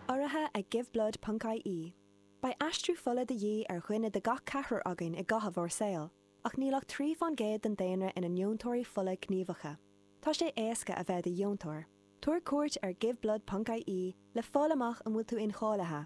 Urraithe ag Giveblood Ponc IE. Beidh aistriú fola de dhíth ar dhuine de gach ceathrar againn i gcaitheamh ár saoil, ach níl ach trí fán gcéad den daonra ina ndeontóirí fola gníomhacha. Tá sé éasca a bheith i do dheontóir. Tabhair cuairt ar Giveblood Ponc IE le fáil amach an bhfuil tú incháilithe.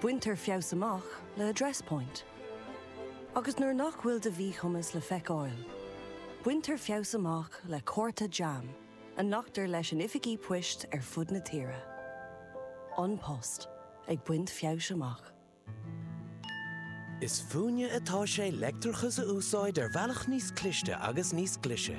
Baintear feabhas amach le Address Point. Agus nuair nach bhfuil do mhíchumas le feiceáil, baintear feabhas amach le cárta jam a nglactar leis in oifigí poist ar fud na tíre. An Post ag baint feabhais amach. Is fúinne atá sé leictreachas a úsáid ar bhealach níos cliste agus níos glaise.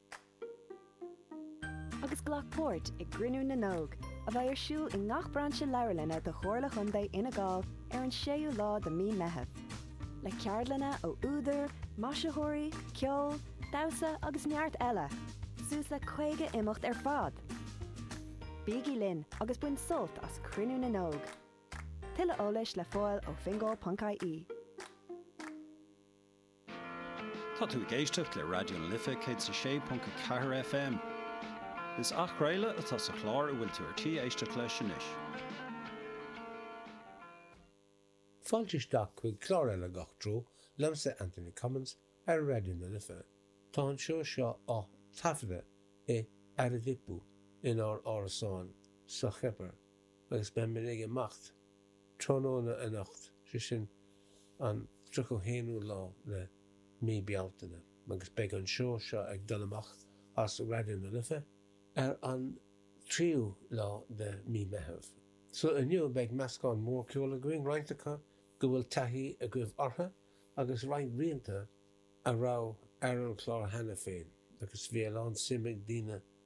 agus glac páirt i gCruinniú na nÓg, a bheidh ar siúl i ngach brainse leabharlainne de Chomhairle Chontae Fhine Gall ar an 6ú lá de mí Meitheamh, le ceardlanna ó údair, maisitheoirí, ceol, damhsa agus neart eile, suas le 50 imeacht ar fad! Bígí linn agus bain sult as Cruinniú na nÓg! Tuilleadh eolais le fáil ó fingal.ie. Tá tú ag éisteacht le Raidió na Life 106.4 FM. Is athchraoladh atá sa chlár a bhfuil tú ar tí éisteacht leis anois. Fáilte isteach chuig clár eile de Gach Treo liomsa Anthony Cummins ar Raidió na Life. Tá an seó seo á thaifeadadh i Aradippou inár árasán sa Chipir agus beidh muid ag imeacht tráthnóna anocht, sé sin an 31ú lá de mhí Bealtaine, agus beidh an seó seo ag dul amach as Raidió na Life ar an 3ú lá de mhí Meitheamh. So inniu beidh meascán mór ceoil againn, roinnt acu go bhfuil taithí agaibh orthu agus roinnt rianta a raibh ar an chlár cheana féin agus bhí a lán suim ag daoine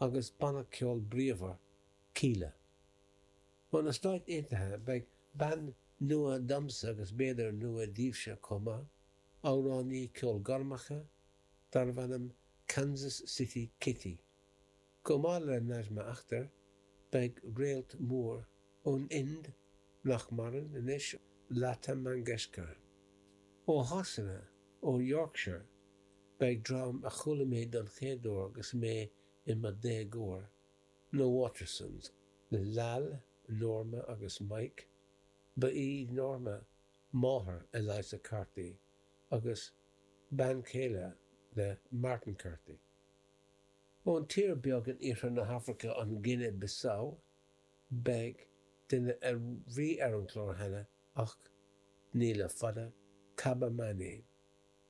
agus banna ceoil bríomhar, Kíla. Ó na Stáit Aontaithe, beidh bean nua domsa agus b'fhéidir nua daoibhse chomh maith, amhránaí ceol gormacha darbh ainm Kansas City Kitty. Chomh maith le Najma Akhtar, beidh réalt mór ón Ind, nach maireann anois, Lata Mangeshkar. Ó Shasana, ó Yorkshire, Beidh dream a chuala mé don chéad uair agus mé i mo dhéagóir, na Watersons, le Lal, Norma agus Mike, ba í Norma máthair Eliza Carthy agus bean chéile le Martin Carthy. Ón tír beag in iarthar na hAfraice, an Guine Bissau, beidh duine a bhí ar an chlár cheana ach ní le fada, Kaba Mané.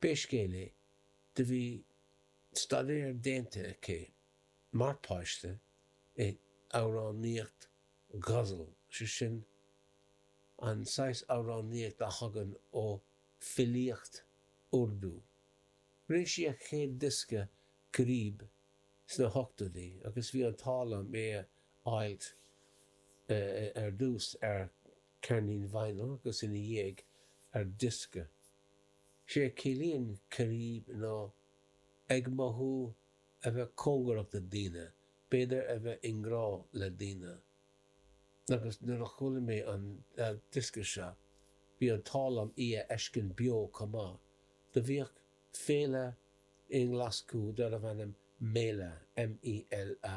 Pé scéal é, do bhí staidéar déanta aici mar páiste i amhránaíocht ghazal, sé sin, an saghas amhránaíocht a thagann ó filíocht Urdu. Rinne sí a céad diosca Qareeb sna hochtóidí agus bhí an t-ádh liom é a fháilt ar dtús ar ceirnín vinyl agus ina dhiaidh ar diosca. Sé a chiallaíonn Qareeb ná ag mothú, a bheith cóngarach do daoine, b'fhéidir a bheith i ngrá le daoine. Agus nuair a chuala mé an diosca seo, bhí an t-ádh liom í a fheiscint beo chomh maith, do bhíodh féile i nGlaschú darbh ainm Mela, M-E-L-A,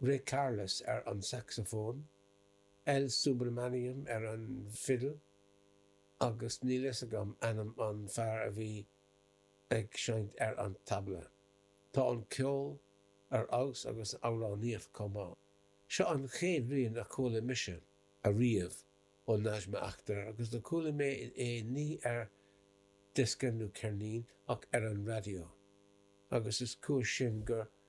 Ray Carless ar an sacsafón, L. Subramaniam ar an bhfidil agus níl fhios agam ainm an fear a bhí ag seinnt ar an tabla. Tá an ceol ar fheabhas agus an amhránaíocht chomh maith. Seo an chéad rian a chuala mise ariamh ó Najma Akhtar agus do chuala mé é ní ar diosca nó ceirnín ach ar an raidió agus is cúis sin gur